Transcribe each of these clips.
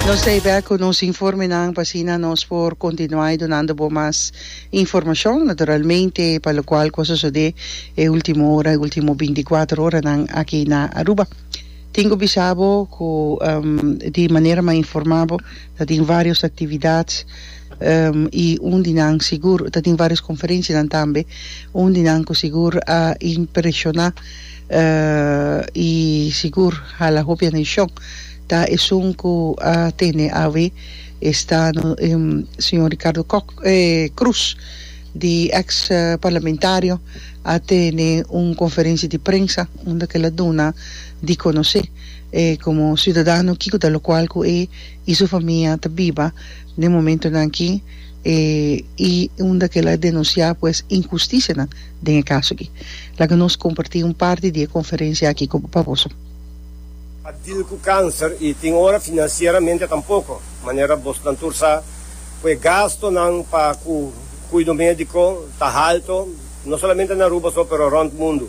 Nos ta hebek cu nos informenan pa asina nos por continuai dunando bo mas informacion. Naturalmente pa locual cu a sosode e ultimo ora, e ultimo binti cuater oranan aki na Aruba. Tin cu bisa bo cu di manera m'a informa bo ta tin varios actividad y un di nan sigur, ta tin varios conferencianan tambe, un di nan cu sigur a impresiona. y sigur hala hopi andishon ta esun cu a tene awe esta no señor Ricardo Kok Cruz di ex parlamentario a tene un conferencia di prensa unda cu el a duna di conoce como ciudadano kico ta locual cu e y su famia ta biba den momentonan aki y unda cu el a denuncia pues injusticianan den e kaso aki. Laga nos kompartí un parti di e konferensia aki ku bo pa boso. A dil ku kanser i tin ora finansieramente tampoko, manera bosonan tur sa, ku e gastonan pa ku kuido médiko ta halto, no solamente na Aruba so, pero rònt mundu.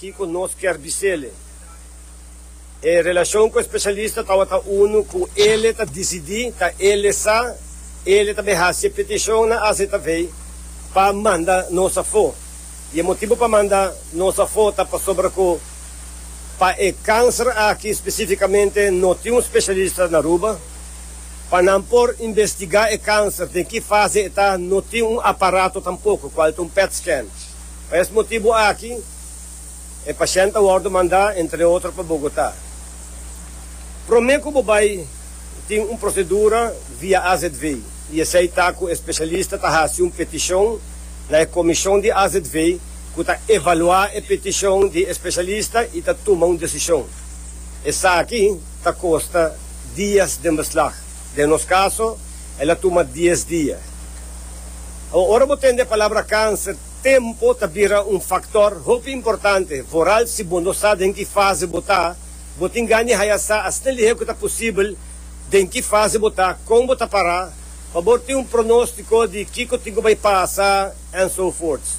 Kiko nos kier bisele? E relacion cu e specialista tabata unu cu ele ta dicidi, ta ele sa, ele ta be haci e peticion na AZV pa manda nos afo. Y e motibo pa manda nos afo ta pasobra cu pa e cancer aki specificamente no tin un specialista na Aruba. Pa nan por investiga e cancer den ki fase e ta no tin un aparato tampoco, cual ta un PET scan. Pa es motibu aki e pashènt a wòrdu mandá entre otro pa Bogotá. Promé ku bo bai tin un prosedura via AZV i esei ta ku e spesialista ta hasi un petishon na e komishon di AZV ku ta evaluá e petishon di e spesialista i ta tuma un desishon. Esaki ta kosta dias den beslag. Den nos kaso el a tuma dies dia. Awa ora bo tende e palabra kanser. Tempu ta bira un faktor hopi importante, vooral si bo no sa den ki fase bo ta. Bo tin gana di haya sa asina lihé ku ta posibel, den ki fase bo ta, kon bo ta pará, pa bo tin un pronóstiko di kiko tin ku bai pasa, enzovoorts.